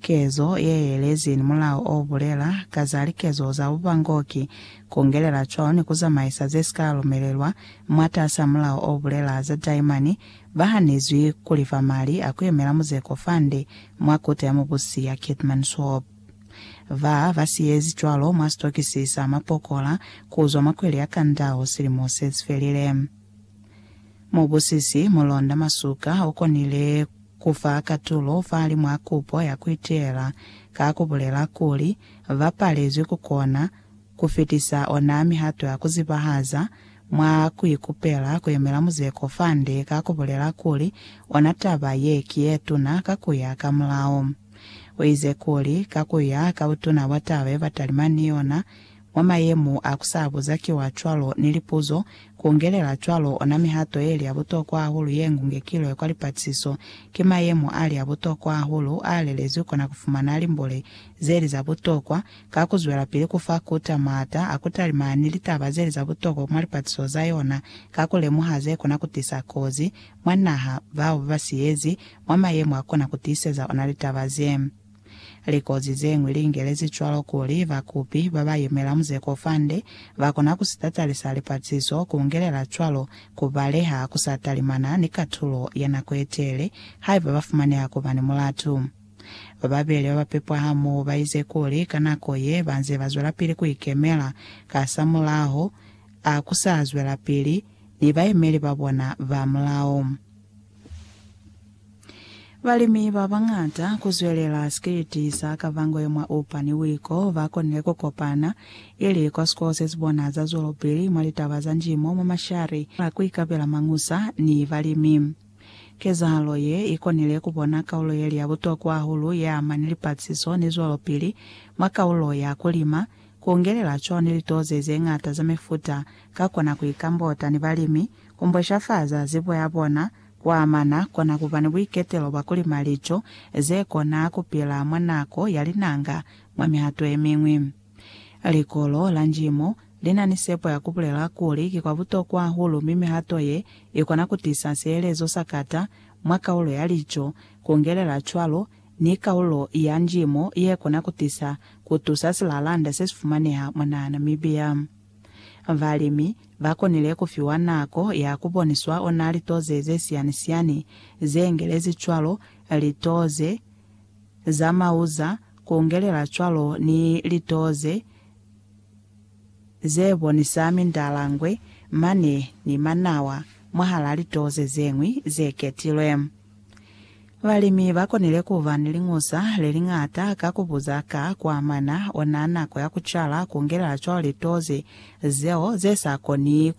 Kezo ye yelezi ni mulao o bulela ka za likezo za bubangoki, ku ngelela cwalo ni ku zamaisa ze si ka lumelelwa mwatas'a mulao o bulela za taimani, ba hanezwi ku lifa mali a ku yemela muzeko fande mwa Kota ya Mubusi ya Keetmanshoop. Ba ba si ezi cwalo mwa sitokisi sa mapokola ku zwa mwa kweli ya Kandao silimo se si felile. Mubusisi Mulonda Masuka u konile Ku fa katulo fahali mwa kupo ya ku iteela ka ku bulela kuli ba palezwi ku kona ku fitisa ona mihato ya ku zibahaza mwa ku ikupela ku yemela muzeko fande ka ku bulela kuli ona taba ye ki ye tuna ka ku ya ka mulao. U ize kuli, ka ku ya ka butuna bwa taba ye ba talima ni yona, Mwa mayemo a ku sa buza kiwa cwalo ni lipuzo, ku ungelela cwalo ona mihato ye li ya butokwa hahulu ye ngungekilwe kwa lipatisiso, ki mayemo a li a butokwa hahulu a lelezwi kona ku fumana limbole ze li za butokwa, ka ku zwelapili ku fa KUTA maata a ku talima ni litaba ze li za butokwa mwa lipatisiso za yona, ka ku lemuha ze kona ku tisa kozi mwa naha, bao ba ba siyezi, mwa mayemo a kona ku tiiseza ona litaba ze. Likozi ze ñwi li ingelezi cwalo kuli bakupi ba ba yemela muzeko fande ba kona ku si tatalisa lipaciso, ku ungelela cwalo ku baleha ku sa talimana ni katulo ya nako ye teele haiba ba fumaneha ku ba ni mulatu. Ba babeli ba ba pepwa hamoho ba ize kuli ka nako ye ba nze ba zwelapili ku ikemela, kasamulaho a ku sa zwelapili ni bayemeli ba bona ba mulao. Balimi ba bañata ku zwelela sikiliti sa Kavangwe mwa Oupa ni Wiko ba konile ku kopana ili kwa sikolo se si bona za zwelopili mwa litaba za njimo mwa mashari a ku ikapela mañusa ni balimi. Kezahalo ye i konile ku bona kaulo ye li ya butokwa hahulu ye ama ni lipatisiso ni zwelopili mwa kaulo ya ku lima, ku ungelela cwalo ni litoze ze ñata za mifuta ka kona ku ikambota ni balimi, ku mbweshafaza zibo ya bona Kuamana kona kuba ni buiketelo bwa kuli malico zekona kupila mwa nako ya linanga mwa mihato yemiñwi. Likolo la Njimo lina ni sepo ya kubulela kuli ki kwa butokwa hahulu mi mihato ye ikona kutisa sielezo sa kata mwa kaulo ya lico, kungelela cwalo ni kaulo ya Njimo yekona kutisa kutusa silalanda sesifumaneha mwa Nahana Mibia. Balimi ba konile ku fiwa nako ya ku boniswa ona litoze ze siani-siani ze ngelezi cwalo litoze za mauza, ku ngelela cwalo ni litoze ze bonisa mindalangwe, mane ni manawa, mwahal'a litoze ze ñwi ze ketilwe. Balimi ba konile ku ba ni liñusa le li ñata ka ku buza ka ku amana ona nako ya ku cala, ku ngelela cwalo litozi zeo ze sa koni